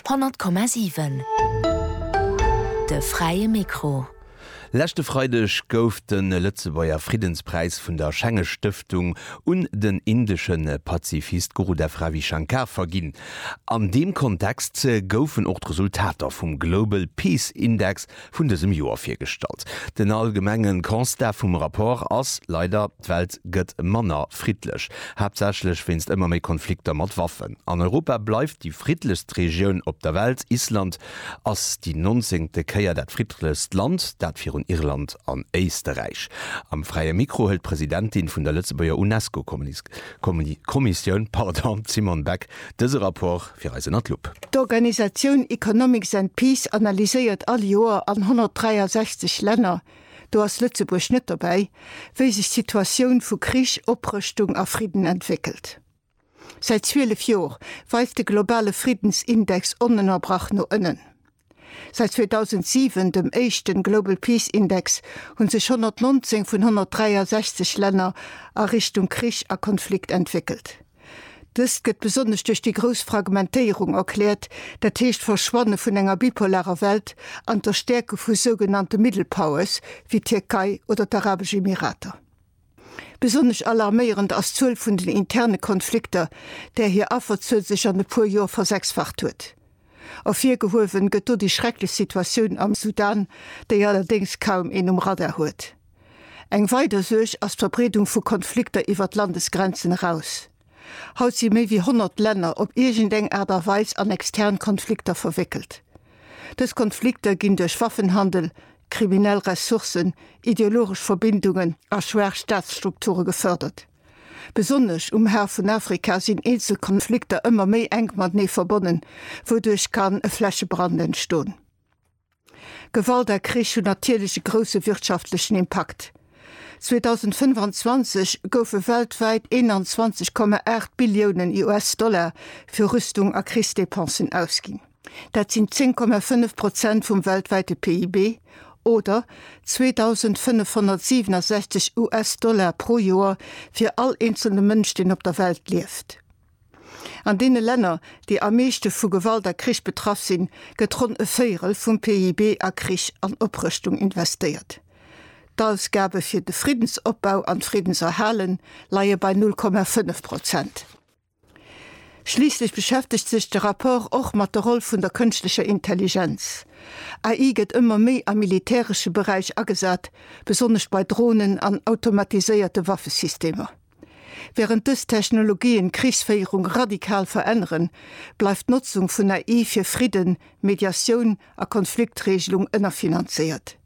Honnert Komma siwen, de fräie Mikro. Leschte Freideg gouf de Lëtzebuerger Friddenspräis vun der Schenge Stëftung un den indesche Pazifist Gurudev Ravi Shankar verginn. An deem Kontext goufen och d'Resultater vum Global Peace Index vun dësem Joer virgestallt. Den allgemenge Constat vum Rapport ass leider, d'Welt gëtt manner friddlech, haaptsächlech wéinst ëmmer méi Konflikter mat Waffen. An Europa bleift déi friddlechst Regioun op der Welt, Island ass déi nonzéngte Kéier dat friddlechst Land, dat virun Irland an Éisterräich. Am Fräie Mikro hëlt d'Presidentin vun der Lëtzebuerger UNESCO-Kommissioun, d'Simone Beck, dëse Rapport. fir eis ënner d'Lupp. D'Organisatioun Economics and Peace analyséiert all Joer an 163 Länner, do ass Lëtzebuerg net dobäi, wéi sech d'Situatioun vu Krich, Oprëschtung a Fridden entwéckelt. Säit 12 Joer weist de globale Friddensindex onënnerbrach no ënnen. Säit 2007 dem éischten Global Peace Index hunn sech 119 vun 163 Länner a Richtung Krich a Konflikt entwéckelt. Dëst gëtt besonnesch duerch déi grouss Fragmentéierung erkläert, dat heescht d'Verschwanne vun enger bipolarer Welt an d'Erstäerke vu sougenannte Middle Powers wéi d'Tierkei oder d'Arabesch Emirater. Besonnesch alarméierend ass d'Zuel vun den interne Konflikter, där hir Afferzuel sech an e puer Joer versechsfacht huet. Ervirgehuewen gëtt do déi schrecklech Situatioun am Sudan, déi allerdéngs kaum een um Radar huet. Eng weider Suerg ass d'Verbreedung vu Konflikter iwwert d'Landesgrenzen eraus. Haut si méi wéi 100 Länner op iergendeng Aart a Weis an extern Konflikter verwéckelt. Dës Konflikter ginn duerch Waffenhandel, kriminell Ressourcen, ideologesch Verbindungen a schwaach Staatsstrukture gefërdert. Besonnesch um Har vun Afrika sinn eenzel Konflikter ëmmer méi enk matenee verbonnen, wouduerch kann e Flächebrand entstoen. Gewalt a Krich hunn natierlech e grousse wirtschaftlechen Impakt. 2025 goufe weltwäit 21,8 Billiounen US-Dollar fir Rüstung a Krichsdepensen ausginn. Dat sinn 10,5 Prozent vum weltwäite PIB, oder 2.567 US-Dollar pro Joer fir all eenzelne Mënsch, deen op der Welt lieft. An deene Länner, déi am meeschte vu Gewalt a Krich betraff sinn, gëtt ronn e Véierel vum PIB a Krich an Oprëschtung investéiert. D'Ausgabe fir de Friddensopbau an d'Friddenserhale leie bei 0,5 Prozent. Schliisslech beschäftegt sech de Rapport och mat der Roll vun der kënschtlecher Intelligenz. AI gëtt ëmmer méi am militäresche Beräich agesat, besonnesch bei Dronen an automatiséierte Waffesystemer. Während dës Technologien d'Krichsféierung radikal veränneren, bleift d'Notzung vun AI fir Fridden, Mediatioun a Konfliktreegelung ënnerfinanzéiert.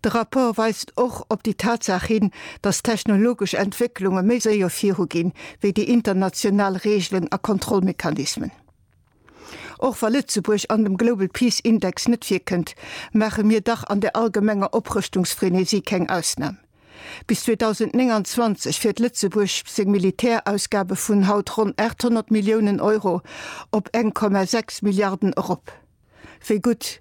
De Rapport weist och op déi Tatsaach hin, datt technologesch Entwécklunge méi séier viru ginn, wéi déi international Reegelen a Kontrollmechanismen. Och wa Lëtzebuerg an dem Global Peace Index net virkënnt, maache mir dach an der allgemenger Oprëschtungsfrenesie keng Ausnam. Bis 2029 wäert Lëtzebuerg seng Militärausgabe vun haut ronn 800 Milliounen Euro op 1,6 Milliarden erop. Wéi gutt